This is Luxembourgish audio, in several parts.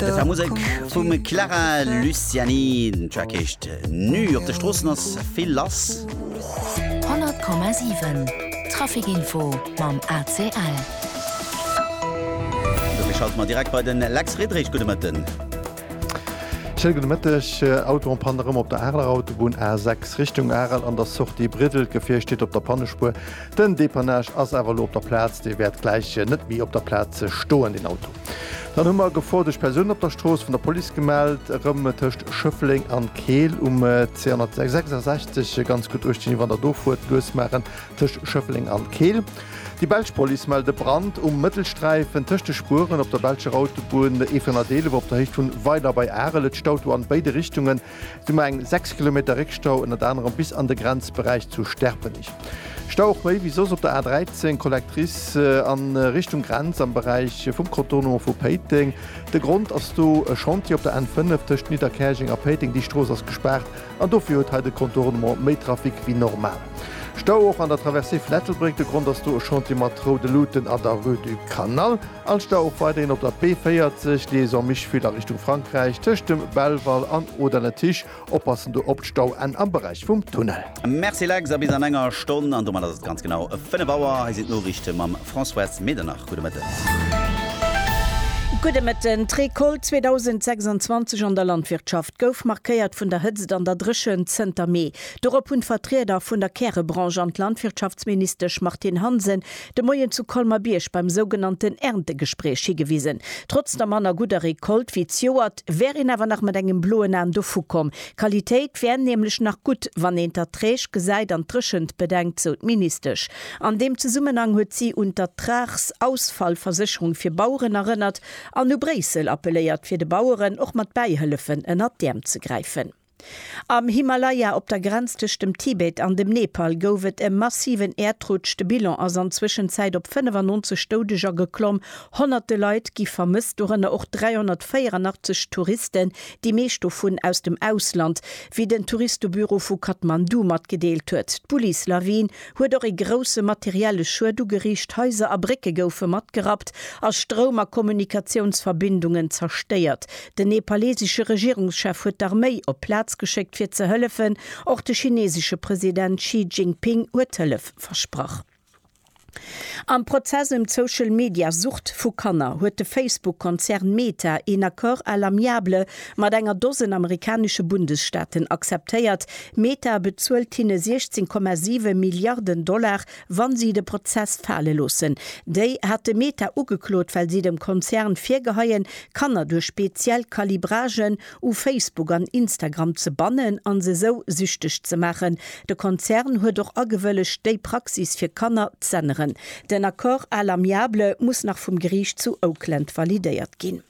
Dat war Musek vum Clara Luciani, den Track heescht Nu. Op de Stroossen ass vill lass. 100,7 Trafikinfo mam ACL. Dofir schalte mer direkt bei den Lex Friedrich. Gudde Mëtten. Schéine gudde Mëtteg. Autoen-Pann erëm op der Areler Autobunn A6 Richtung Arel an der Sortie Briddel. D'Gefier steet op der Pannespuer. Den Depannage ass awer elo op der Plaz. Dee wäert gläich net méi op der Plaz stoen, den Auto. Dann hu mer e Gefor duerch Persounen op der Strooss vun der Police gemellt, erëm tëscht Schëffleng an Keel um C166. Ganz gutt uecht ginn, wann der do fuert, lues maachen tëscht Schëffleng an Keel. Déi belsch Police mellt e Brand um Mëttelsträifen tëscht de Spueren op der belscher Autobunn E411 op der Héicht vun Weiler bei Arel. Et staut do an béide Richtungen. Du mer eng 6 Kilometer Réckstau ënnert anerem bis an de Grenzberäich zu Sterpenich. Stau och méi wéi soss op der A 13, Collectrice an Richtung Grenz am Beräich vum Contournement vu Péiteng. De Grond ass do e Chantier op der N 5 tëscht Nidderkäerjeng a Péiteng. Déi Strooss ass gespaart an dofir huet hei de Contournement méi Trafic wéi normal. Stau och an der Traversée vun Ettelbréck. De Grond ass do e Chantier mat roude Luuten an der Rue du Canal. Alster och weiderhin op der B40, Liaison Mischwil a Richtung Frankräich, tëscht dem Belval an Oder-Lëttich. Oppassen do op d'Stauenn am Beräich vum Tunnel. Merci Lex, a bis an enger Stonn. An domat ass et ganz genau 5 Auer. Hei sinn d'Noriichte mam Françoise Medernach. Gudde Mëtten. Gudde Mëtten. D'Recolte 2026 an der Landwirtschaft gouf markéiert vun der Hëtzt an der Dréchent zënter Mee. Dorop hunn d'Vertrieder vun der Kärebranche an d'Landwirtschaftsministesch Martine Hansen De Moien zu Colmer-Bierg beim sougenannten Erntegespréich higewisen. Trotz der manner gudder Recolte wéi d'Joert, wär een awer nach mat engem bloen An dovu komm. D'Qualitéit wär nämlech nach gutt, wann een d'Erträg gesäit an d'Dréchent bedenkt, sou d'Ministesch. An deem Zesummenhang huet si un d'Ertragsausfallversécherung fir Baueren erënnert an u Bréissel appeléiert, fir de Baueren och mat Bäihëllefen ënnert d'Äerm ze gräifen. Am Himalaya, op der Grenz tëscht dem Tibet an dem Nepal, gouf et e massiven Äerdrutsch. De Bilan ass an Zwëschenzäit op 95 Doudeger geklomm. Honnerte Leit gi vermësst, dorënner och 384 Touristen, déi meescht dovun aus dem Ausland, wéi den Touristebüro vu Kathmandu matgedeelt huet. D'Bullislawin huet och ee grousse materielle Schued ugeriicht, Haiser a Brécke goufe matgerappt a Stroum a Kommunikatiounsverbindungen zerstéiert. Den nepalesesche Regierungschef huet d'Arméi op d'Plaz geschéckt fir ze hëllefen. Och de chinesesche President Xi Jinping huet Hëllef versprach. Am Prozess ëm d'Social-Media-Sucht vu Kanner huet de Facebook-Konzern Meta een Accord à l'amiable mat enger Dosen amerikanesche Bundesstaaten akzeptéiert, Meta bezuelt hinne 16,7 Milliarden Dollar, wa si de Prozess fale loossen. Déi hate Meta ugeklot, well si dem Konzern virgeheien, Kanner duerch speziell Calibragen u Facebook an Instagram ze bannen an se sou süchteg ze maachen. De Konzern huet och agewëllegt, déi Praxis fir Kanner z'änneren. Den Accord à l'amiable muss nach vum Geriicht zu Oakland validéiert ginn.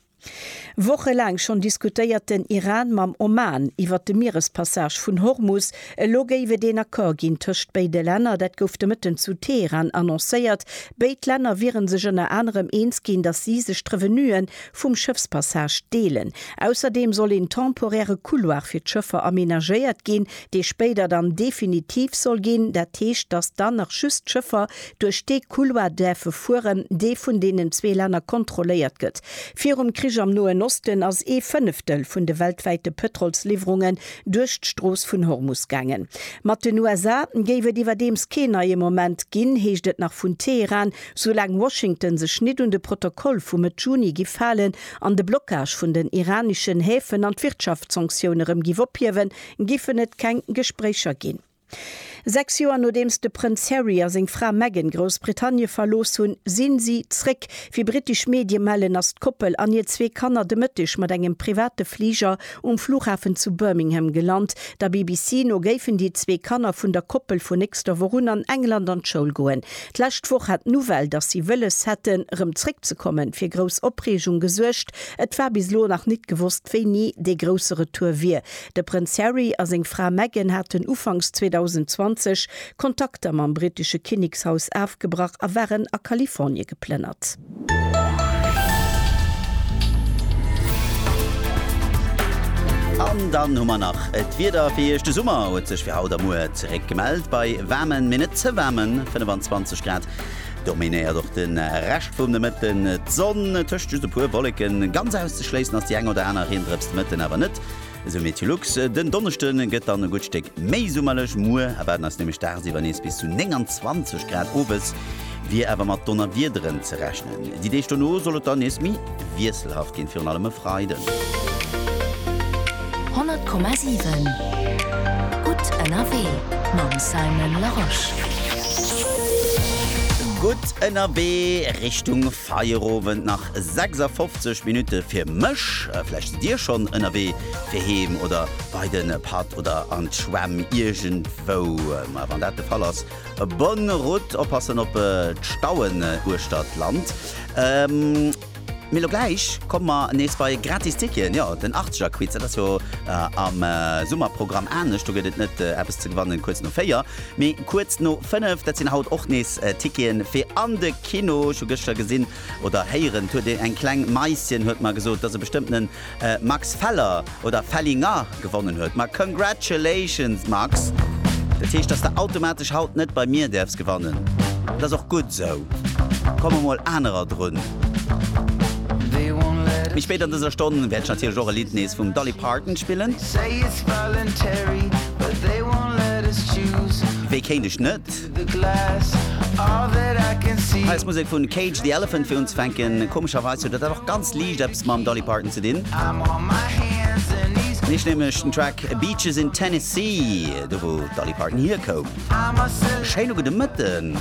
Wochelaang schonn diskutéiert den Iran mam Oman iwwert de Mierespassage vun Hormus. Elo géif et een Accord ginn tëscht béide Länner. Dat gouf de Mëtten zu Teheran annoncéiert. Béid Länner wiere sech ënner anerem eens ginn, datt si sech d'Revenue vum Schëffspassage deelen. Ausserdeem soll een temporäre Couloir fir d'Schëffer amenagéiert ginn, dee spéider dann definitiv soll ginn. Dat heescht, datt dann nach just d'Schëffer duerch dee Couloir däerfe fueren, dee vun deenen zwee Länner kontrolléiert gëtt. Virum Krich am Noen Osten ass ee Fënneftel vun de weltwäite Pëtrolsliwwerungen duerch d'Strooss vun Hormus gaangen. Mat den USA géif et iwwerdeems keen neie Moment ginn, heescht et nach vun Teheran, soulaang Washington sech nit un de Protokoll vu Mëtt Juni giff halen an de Blockage vun den iraneschen Häfen an d'Wirtschaftssanktioune rëm giff ophiewen, giffen et keng Gespréicher ginn. Sechs Joer nodeems de Prënz Harry a seng Fra Meghan Groussbritannie verlooss hunn, sinn si zréck. Wéi brittesch Medie mellen, ass d'Koppel an hir zwee Kanner de Mëtteg mat engem private Fliger um Flughafen zu Birmingham gelant. Der BBC no géifen déi zwee Kanner vun der Koppel vun nächster Woch un an England an d'Schoul goen. D'lescht Woch hat d'Nouvelle, datt si wëlles hätten, rëm zréckzekommen, fir grouss Opreegung gesuergt. Et war bis elo nach nit gewosst, wéini dee grousse Retour wier. De Prënz Harry a seng Fra Meghan haten ufanks 2020 Kontakter mam brittesche Kinnekshaus afgebrach a waren a Kalifornie geplënnert. An dann hu mer nach d'Wieder fir Iech. De Summer huet sech fir haut a muer zeréck gemellt. Bei waarmen, mee net ze waarmen 25 Grad dominéiert och de Rescht vum Nomëtten d'Sonn, tëscht just e puer Wolleken. Ganz auszeschléissen ass déi eng oder aner Riendrëps de Mëtten awer net. Esou Meteolux den Donneschde gëtt dann e gutt Stéck méi summerlech. Muer erwaarden eis nämlech dagsiwwer nees bis zu 29 Grad. Owes wier awer mat Donnerwiederen ze rechnen. Déi Deeg dono soll et dann nees méi wiesselhaft ginn, virun allem e Freiden. 100,7 gutt ënnerwee mam Simon Larosche. Gutt ënnerwee Richtung. Feierowend, nach 56 Minutte fir mech. Vläicht sidd Dir schonn ënnerwee fir heem oder bei de Patt oder an d'Schwämm iergendwou. Maja, wann dat de Fall ass, bonne route, oppassen op d'Stauen uechter d'Land. Mee elo gläich komme mer nees bei Gratis Ticketen. Jo, den Achtzegerquiz, dat ass jo am Summerprogramm anescht. Do gëtt et net eppes ze gewannen kuerz no véier, mee kuerz no fënnef. Dat sinn haut och nees Ticketen fir an de. Kino, ech hu gëschter gesinn oder héieren, 't huet ee eng kleng Maischen huet mer gesot, dass e bestëmmtenen Max Feller oder Fellinger gewonnen huet. Ma congratulations Max! Dat heescht, dass de automatesch haut net bei mir däerfs gewannen. Dat ass och gutt esou. Komme mol anerer drun. Méi spéit an dëser Stonn wäert ech natierlech och e Lidd nees vum Dolly Parton spillen. Wéi kéint ech net? Hei ass Musek vun Cage the Elephant fir unzefänken. Komescherweis huet dat awer och ganz liicht eppes mam Dolly Parton ze dinn. Nees nämlech den Track Beaches in Tennessee, do wou d'Dolly Parton hierkoum. Schéin ugedemëtten!